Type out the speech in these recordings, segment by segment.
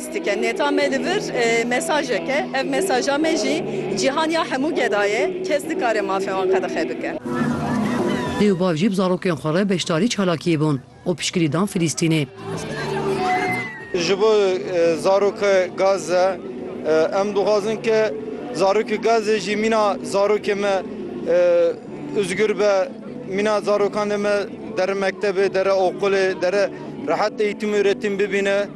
Stike neta me li vir mesajek e. Ev mesaja me jî cîhan ya hemû geda ye. Kes nikare mafê wan qedexe bike. Dê û bav jî bi zarokên xwe re beşdarî çalakiyê bûn û piştgirî dan Filîstînê. Ji bo zaroke Gaze, em dixwazin ke zarokê Gaze jî mîna zarokê me ûzgûr be, mîna zarokanê me dere mektebê, dere oqûlê, dere rehet eîtim û uretîm bibîne.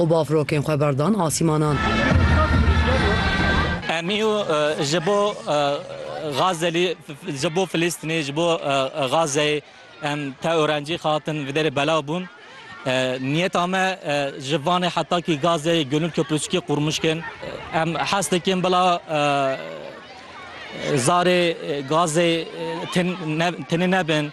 Û bafrokên xwe berdan asîmanan. Em î ji bo Gazelî, ji bo Filîstînê, ji bo Gazeyê em teorencî xehatin vê derê belav bûn. Niyeta me ji Vanê heta kî Gazeyê Gönül Köprüsükê qurmuş kin. Em hes dikin bila zarê Gazeyê tenê nebin.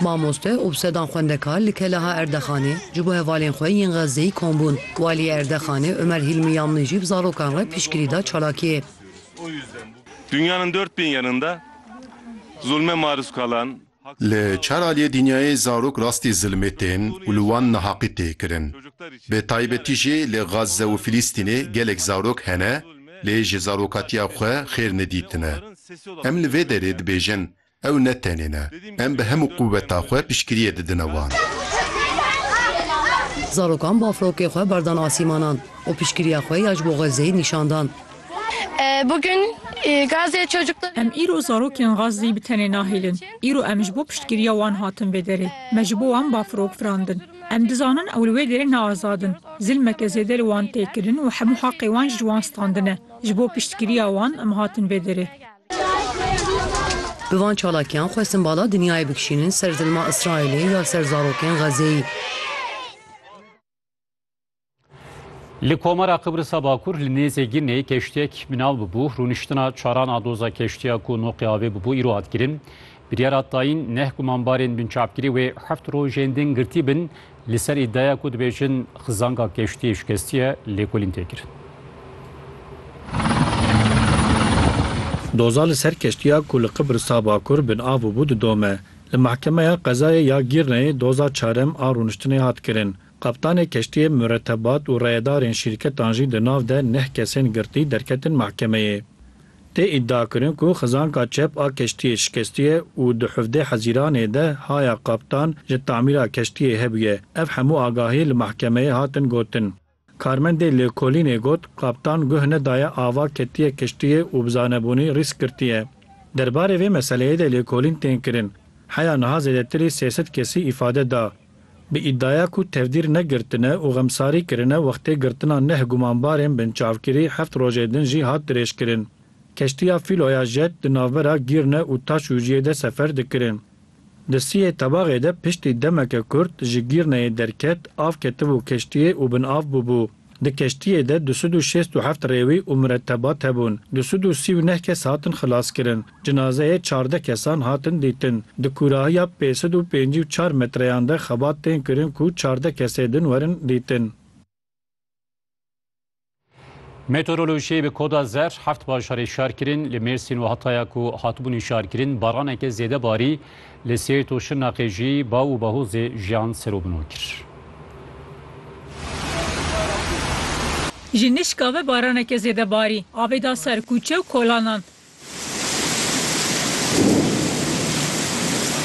Mamoste û bi sedan xwendekar li Kelaha Erdexanê ji bo hevalên xwe yên Xezzeyî kom bûn. Waliyê Erdexanê Ömer Hilmi Yamni jî bi zarokan re piştgirî da çalakiyê. Dünyanın dört bin yanında zulme maruz kalan. Li çar aliyê dinyayê zarok rastî zilmê tên û li wan nahaqî tê kirin. Bi taybetî jî li Xezze û Filîstînê gelek zarok hene lê ji zarokatiya xwe xêr nedîtine. Em li vê derê dibêjin Ew ne tenê ne. Em bi hemû quweta xwe piştgiriyê didine wan. Zarokan bafrokê xwe berdan asîmanan û piştgiriya xwe ya ji bo Xezzeyê nîşan dan. Em îro zarokên Xezzeyê bi tenê nahêlin. Îro em ji bo piştgiriya wan hatin vê derê. Me ji bo wan bafrok firandin. Em dizanin ew li wê derê ne azad in. Zilmeke zêde li wan tê kirin û hemû heqê wan jî ji wan standine. Ji bo piştgiriya wan em hatin vê derê. Bi van çalakiyan xwestin bala dinyayê bikişînin ser zilma Îsraîlê ya ser zarokên Xezeyê. Li Komara Qibrisa Bakur li nêzê Ginê keştiyek minav bû. Rûniştina çaran a doza keştiya ku noqê avê bû îro hat kirin. Biryara tayîn neh ku mambarên binçavkirî wê heft rojên din girtî bin, li ser îdiaya ku dibêjin xizanga keştiyê şikestî ye, lêkolîn tê kirin. Doza li ser keştiya ku li Qibrisa Bakur bin av bû didome. Li Mehkemeya Qezayê ya Gîrneyê doza çarem a rûniştinê hat kirin. Kaptanê keştiyê, muretebat û reyedarên şîrketan jî di nav de neh kesên girtî derketin mehkemeyê. Tê îdiakirin ku xizanka çep a keştiyê şikestiye û di hevdeh hezîranê de haya kaptan ji tamîra keştiyê hebûye. Ev hemû agahî li mehkemeyê hatin gotin. Karmendê lêkolînê got, Kaptan guh nedaye ava ketiye keştiyê û bi zanebûnî rîsk girtiye. Derbarê vê meseleyê de lêkolîn tên kirin. Heya niha zêdetirî sê sed kesî îfade da. Bi îdiaya ku tevdîr negirtine û xemsarî kirine wextê girtina neh gumanbarên binçavkirî heft rojê din jî hat dirêjkirin. Keştiya fîloya jet di navbera Gîrne û Taşûciyê de sefer dikirin. Di siyê tebaxê de piştî demeke kurt ji Gîrneyê derket, av ketibû keştiyê û bin av bûbû. Di keştiyê de du sed û şêst û heft rêwî û miretebat hebûn. Du sed û sî û neh kes hatin xilaskirin. Cinazeyê çardeh kesan hatin dîtin. Di kûrahiya pênc sed û pêncî û çar metreyan de xebat tên kirin ku çardeh kesê din werin dîtin. Meteorolojiyê bi koda zer heft bajarê şar kirin. Li Mêrsîn û Hataya ku hatibûn hişarkirin baraneke zêde barî. Li Sêrt û Şirnexê jî bav û bahozê jiyan ser û bino kir. Ji nişka ve baraneke zêde barî. Avê da ser kûçe û kolanan.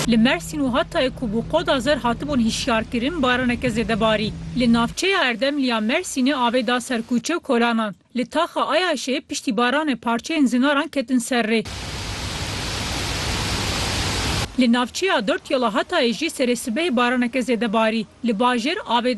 Li Mersîn û Hatayê ku bû qoda zer hatibûn hişyarkirin, baraneke zêde barî. Li navçeya Erdemlî ya Mersînê avê da ser kûçe û kolanan. Li taxa Ayaşê piştî baranê parçeyên zinaran ketin ser rê. Li navçeya Dort Yola Hatayê jî serê sibehê baraneke zêde barî. Li bajêr avê